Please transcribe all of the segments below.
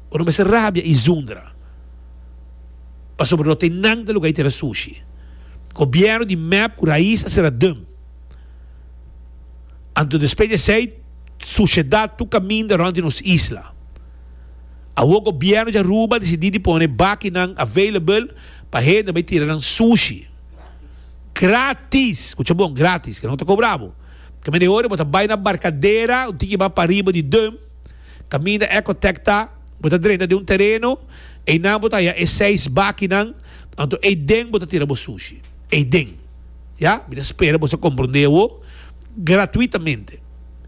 Ora mester rabia i zundra pasobra no t'e nan ta luga i tira sushi. Gobierno di mep ku rais a sera dum. Anto despe di esei sushedat tur kaminda rond di nos isla. Awor Gobierno di Aruba a disidi di pone bakinan available pa hende bai tira nan sushi. Gratis! Kucha bon, gratis! Ke no ta kobra bo. Kaminda e ora bo ta bai na barkadera un tiki bai pariba di dum. Kaminda Ecotech ta, bo ta drenta den un tereno, einan bo ta haña e seis bakinan, anto ei den bo ta tira bo sushi. Ei den. Ya, mi ta spera boso komprondé awo, gratuitamente.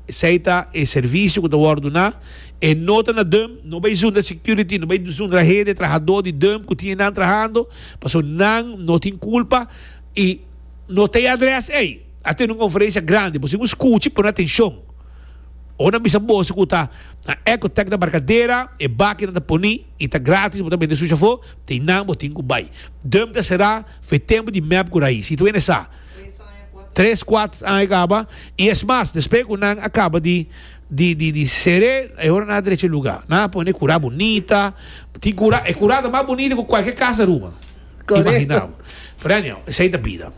Esei ta e servisio ku ta wòrdu duná, e no ta na dùm, no bai zundra security, no bai zundra hende trahadó di dùm ku tin einan trahando, paso nan no tin kulpa i no ta e adrès ei. A tene un konferensia grandi, boso tin ku skuchi, pone atenshon. Bo na bisa boso ku ta na Ecotec na Barkadera, e baki nan ta poni i ta gratis, bo ta mete su shofó, tin nan bo tin ku bai. Dum ta será fe tempu di mep ku rais. Si tuene sa, tres kuat aña kaba, i es mas, despe ku nan a kaba di di ser'é, e ora nan a drecha e lugá. Nan a pone kurá bunita, tin kurá, e kurá ta mas bunita ku kualke kas Aruba. Imagina bo. Pero anyhow, esei ta bida.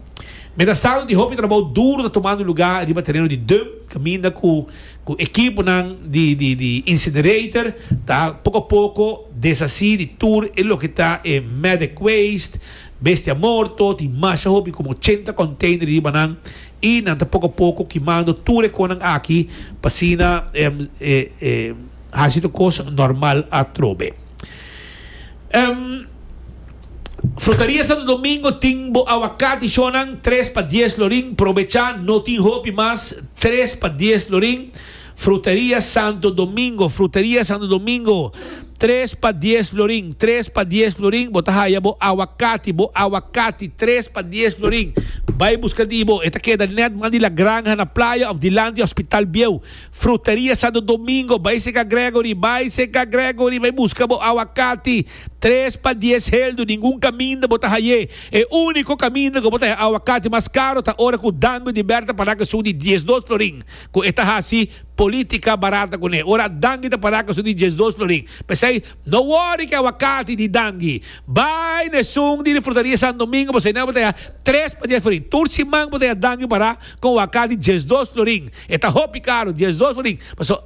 Mientras tanto di hopi trabou duro ta tomando luga riba tereno di dump, caminda cu cu ekiponan di di di incinerator ta poco a poco deshaci di tur e loke ta e medic waste, bestia morto, tin masha hopi como ochenta container riba nan y nan ta poco a poco kimando tur e conan aki pa asina haci tur cos normal atrobe. Frutaria Santo Domingo tin bo awakati shonnan tres pa dies lorin probechá no tin hopi mas tres pa dies lorin Frutaria Santo Domingo Frutaria Santo Domingo tres pa dies lorin tres pa dies lorin bo ta haya bo awakati bo awakati tres pa dies lorin bai buska di bo e ta keda nèt man di La Granja na Playa òf dilanti Hospital Bieu. Frutaria Santo Domingo, Bai Seka Gregory, Bai Seka Gregory, bai buska bo awakati, tres pa dies heldu, ningun kaminda bo ta haye, e uniko kaminda ku bo ta haye awakati mas karo ta ora ku dango di Berta paraka su di diesdos florin, ku e ta hasi politika barata kuné, ora dangi ta paraka su di diesdos florin, p'esei no wori ku e awakati di dangi, bai n'esun di di Frutaria Santo Domingo, p'esei nan bo ta haye tres pa dies florin, tur siman bo ta haye dangi para. con waka di diesdos florin. E ta hopi caro, diesdos florin. Paso,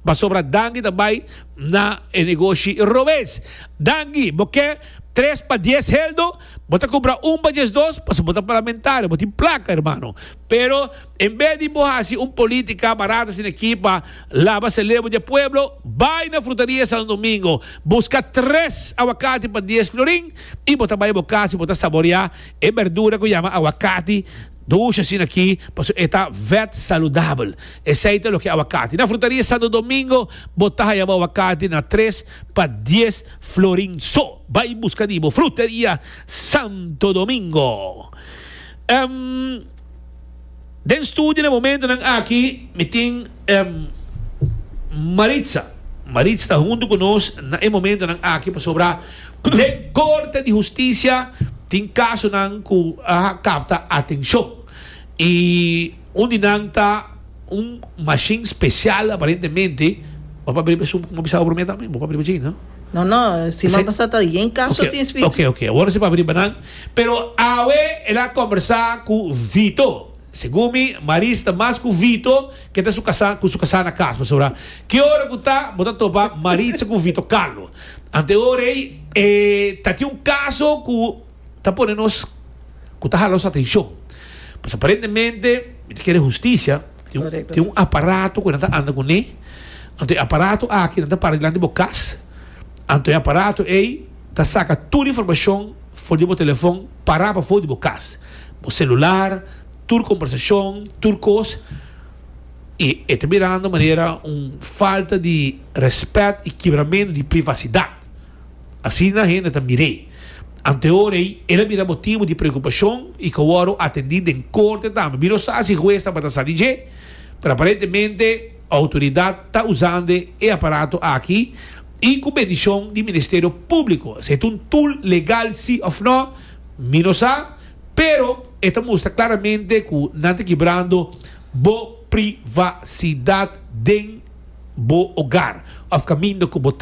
pasobra Dangi ta bay na e negoshi robes. Dangi, bo ke tres pa dies heldo? Bo ta cumpra un pa diesdos? Paso bo ta parlamentario, bo tin placa, hermano. Pero, en bes di bo haci un politica barata asina aki pa laba celebo di e pueblo, bay na Frutaria Santo Domingo, busca tres awakati pa dies florin y bo ta bay bo casa y bo ta saborea E berdura cu yama aguacati dushi asina aki pasobra e ta vet saludabel. Esey ta loke aguacati. Na Frutaria Santo Domingo bo ta haya bo aguacati na tres pa dies florin so. Bay busca di bo Fruteria Santo Domingo. Den studio den momentonan aki mi tin Maritza. Maritza ta hunto ku nos na e momentonan aki pasobra den Korte di Hustisia tin kasonan ku a kapta atenshon i un di nan ta un mashin spesial aparentemente bo papia riba esun ku bisaba promé tambe bo papia riba dje no? No no si mamasa ta dje kaso tin spiritu. Oke oke oke awor si papia riba nan. Pero awe el a kombersá ku Vito. Segun mi, Maris ta mas ku Vito ke ta su kasá ku su kasá na kas. Pasobra ki ora ku ta bo ta topa Maritza ku Vito Carlo. Ante ora ei e ta tin un kaso ku ta pone nos ku ta hala nos atenshon. Pues aparentemente mi ta kere hustisia. Tin un aparato ku nan ta anda kuné. Anto e aparato aki nan ta para dilanti bo kas. Anto e aparato ei. Ta saca tur informacion for di bo telefon para pafo di bo cas, bo celular, tur conversacion, tur cos. Y e ta mirando manera un falta di respet y kibramento di privacidad. Asina hende ta mir'e. Ante ora ey el a bira motibo di preocupacion y cu wordo atendi den corte tambe. Mi no sa si huez tabata sa di dje, pero aparentemente autoridad ta usande e aparato aki. I ku bendishon di Ministerio Públiko. Si e ta un tul legal sí òf nò, mi no sa, pero e ta mustra klaramente ku nan ta kibrando bo privasidat den bo ogar òf kaminda ku bo.